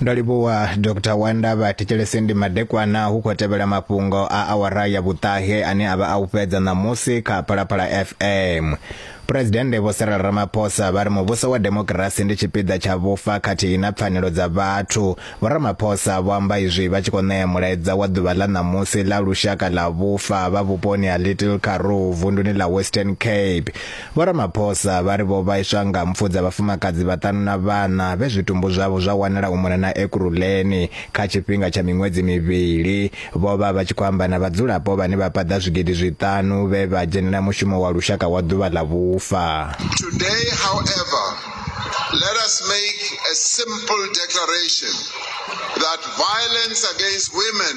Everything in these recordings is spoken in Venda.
ndo livhuwa dr wanda vha thetshelesi ndi madekwana hu khou tevhela mafhungo a awara ya vhuṱahe ane a vha a u fhedza ṋamusi kha phalaphala fm phuresidennde vho cyril ramaphosa vha ri muvhuso wa demokirasi ndi tshipiḓa tsha vhufa khathihi na pfanelo dza vhathu vho ramaphosa vho amba izwi vha tshi khou ṋea mulaedza wa ḓuvha ḽa ṋamusi ḽa lushaka ḽa vhufa vha vhuponi ha little karoo vunduni ḽa western cape Vho Ramaphosa vha ri vho vhaiswa nga mpfu dza vhafumakadzi vhaṱanu na vhana vhe zwitumbu zwavho zwa wanala u mona na Ekurhuleni kha tshifhinga tsha miṅwedzi mivhili. Vho vha vha tshi khou amba na vhadzulapo vhane vha paḓa zwigidi zwiṱanu vhe vha dzhenela mushumo wa lushaka wa ḓuvha ḽa vhufa. Today, however, let us make a simple declaration that violence against women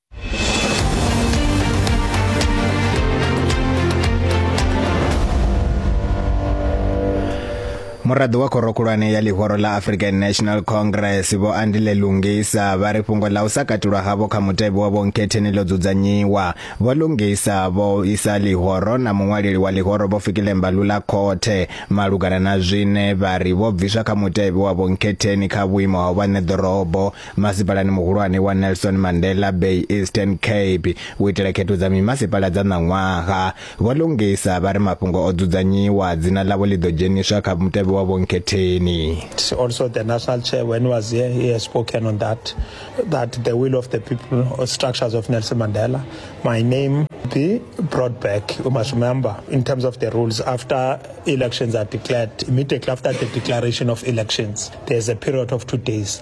muraḓo wa khoro khulwane ya ḽihoro ḽa african national congress vho andile lungisa vha ri fhungo ḽa u sa katulwa havho kha mutevhe wa vhonkhetheni ḽo dzudzanyiwa vho lungisa vho isa ḽihoro na muṅwaleli wa ḽihoro vho fikile mbalula khothe malugana na zwine vha ri vho bviswa kha mutevhe wa vhonkhetheni kha vhuimo ha u vha ṋeḓorobo Masipalani muhulwane wa Nelson Mandela Bay Eastern Cape u itela khetho dza mimasipala dza ṋaṅwaha, Vho Lungisa vha ri mafhungo o dzudzanyiwa dzina ḽavho ḽi ḓo dzheniswa kha mutevhe wa vhonkhetheni. Also the national chair when he was here he has spoken on that that the will of the people or structures of Nelson Mandela my name be brought back you must remember in terms of the rules after elections are declared immediately after the declaration of elections there's a period of two days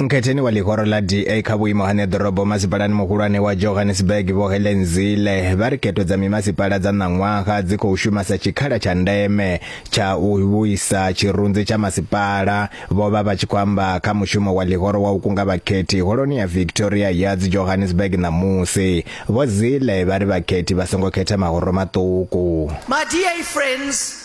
Nkhetheni wa ḽihoro ḽa DA kha vhuimo ha ṋeḓorobo masipalani muhulwane wa Johannesburg Vho Helen Zille vha ri khetho dza mimasipala dza ṋaṅwaha dzi khou shuma sa tshikhala tsha ndeme tsha u vhuisa tshirunzi tsha masipala. Vho vha vha tshi khou amba kha mushumo wa ḽihoro wa u kunga vhakhethi holoni ya Victoria Yards Johannesburg ṋamusi. Vho Zille vha ri vhakhethi vha songo khetha mahoro maṱuku. My DA friends,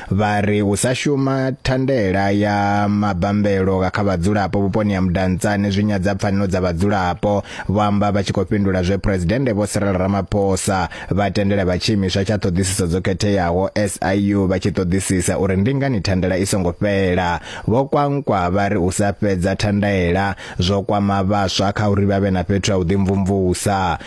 vha ri u sa shuma thandela ya mabambelo kha vhadzulapo vhuponi ha Mudantsane zwi nyadza pfanelo dza vhadzulapo vho amba vha tshi khou fhindula zwe Presidennde Vho Cyril Ramaphosa vha tendela vha tshiimiswa tsha ṱhoḓisiso dzo khetheaho SIU vha tshi ṱoḓisisa uri ndi ngani thandela i songo fhela vho kwankwa vha ri u sa fhedza thandela zwo kwama vhaswa kha uri vha vhe na fhethu ha u ḓimvumvusa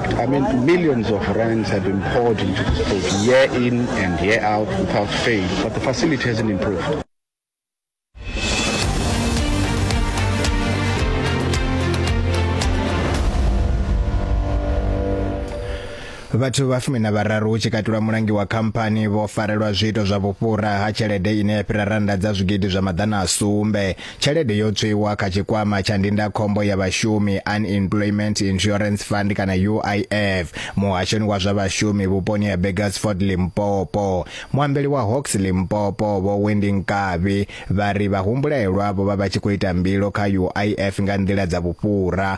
I mean, millions of rands have been poured into this place year in and year out without fail, but the facility hasn't improved. vhathu vha fumi na vhararu hu tshi katulwa mulangi wa khamphani vho farelwa zwiito zwa vhufhura ha tshelede ine ya fhira rannda dza zwigidi zwa maḓana a sumbe Tshelede yo tswiwa kha tshikwama tsha ndindakhombo ya vhashumi Unemployment Insurance Fund kana UIF muhashoni wa zwa vhashumi vhuponi ha Burgersford Limpopo. Muambeli wa Hawks Limpopo vho Wendy Nkabi vha ri vhahumbulelwa vho vha vha tshi khou ita mbilo kha UIF nga nḓila dza vhufhura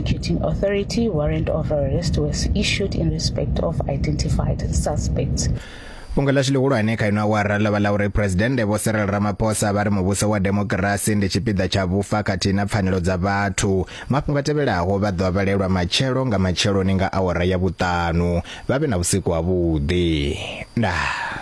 Prosecuting Authority warrant of arrest was issued in respect of identified suspects. fhungo ḽashu ḽihulwane kha ino awara ḽo vha ḽa uri phuresidennde vho Cyril Ramaphosa vha ri muvhuso wa demokirasi ndi tshipiḓa tsha vhufa khathihi na pfanelo dza vhathu. Mafhungo a tevhelaho vha ḓo a vhalelwa matshelo nga matsheloni nga awara ya vhuṱanu. Vha vhe na vhusiku havhuḓi. Ndaa.